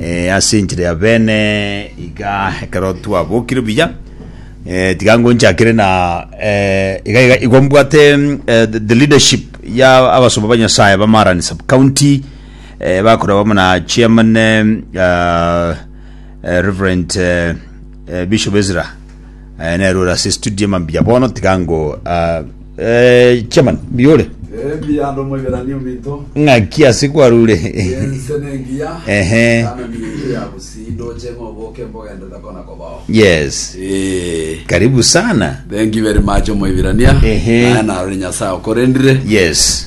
Eh, ase enchera ya bene iga ekero twabokire buya eh, tiga ngonchakire na eh, iga iga igwa mbwate mm, eh, the, the leadership ya abasomba ba nyasaye ba marani sub county eh, bakorwa bamo na chairman eh, uh, eh, reverend eh, eh, bishop ezra Eh, nero ore ase studio mambia bono tiga ngo ah, eh, chairman biore Ebi ando mwebirani ominto. ng'aki ase kwarure Ense nengiya. Ehe. Kana minto ya busindo chemo oboke mbogende takona kobao. yes Eh. karibu sana Thank you very much omwebirania. Ehe. Naye narore Nyasaye okorendire. yes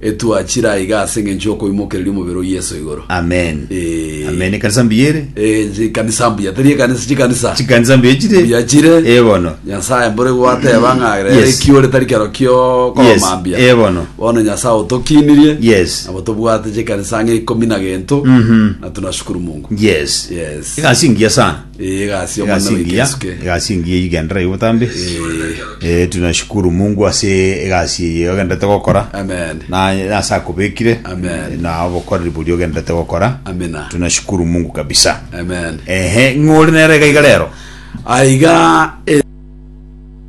Etwachire aiga ase engencho y'okoimokereria omobere o Yeso igoro. Amen. Eh. Amen. Ekanisa mbuya ere. Eh, chikanisa mbuya, teri ekanisa chikanisa. Chikanisa mbuya chire. Mbuya chire. Eh, bono. Nyasae mbore gwateba ng'a rero Yes. ekiore tari kero kio Yes. komambia. Eh, bono. Bono Nyasae otokinirie. Yes. Nabo tobwate chikanisa ng'a ikomi na gento. Mhm. Na tunashukuru Mungu. Yes. Yes. Egasi engiya sana. Eh, egasi omwana egasi engiya oikesuke. egasi engiya igendera igo botambe Eh, Eh, tunashukuru mungu ase egasi eye ogenderete gokora Amen. na ase akobekire Amen. na obokoreri bori ogenderete gokora Amina. tunashukuru mungu kabisa Amen. ehe ng'ori nere iga iga rero Aiga